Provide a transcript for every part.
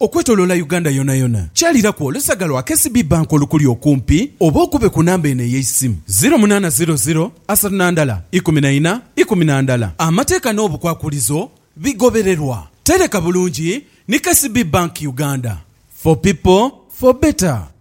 Okwetoloola Uganda yonayona, kyaliraku olusaga lwa KCB Bank olukuli okumpi oba okube ku namba eno ey'eisimu, ziro munaana ziro ziro asatu na ndala ikumi na ina ikumi na ndala. Amateeka n'obukwakulizo bigobererwa. Tereka bulungi ni KCB Bank Uganda. For people, for better.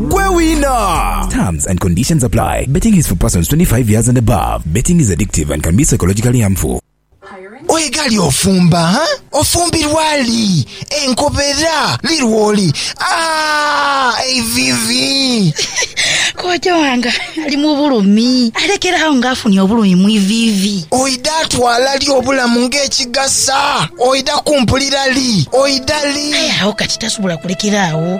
gwe wina. Terms and conditions apply. Betting is for persons 25 years and above. Betting is addictive and can be psychologically harmful. Oye gali ofumba ha? Ofumbirwa li? Enkobera li lwoli? Aah eivivi! Kojja wange ali mu bulumi. Alekera agho nga afunye obulumi mu iviivi. Oidha twala li obulamu nga ekigasa? Oidha kumpulira li? Oidha li? Aye agho kati tasobola kulekera agho.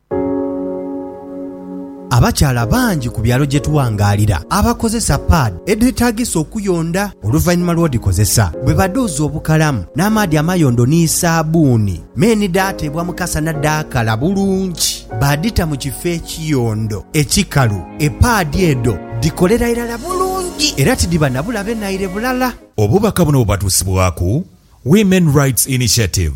Abakyala bangi ku byalo gye tuwangaalira abakozesa paadi edhetaagisa okuyonda oluvannyuma lw'odhikozesa. Bwe badhuuza obukalamu n'amaadhi amayondo ni saabbuuni, me ni dhaateebwa mu kasana dhaakala bulungi, baadhita mu kifo ekiyondo ekikalu, epaadi edho dhikolera irala bulungi era tidhiba na bulabe naire bulala. Obubaka buno bubatuusibwaku Women Rights Initiative.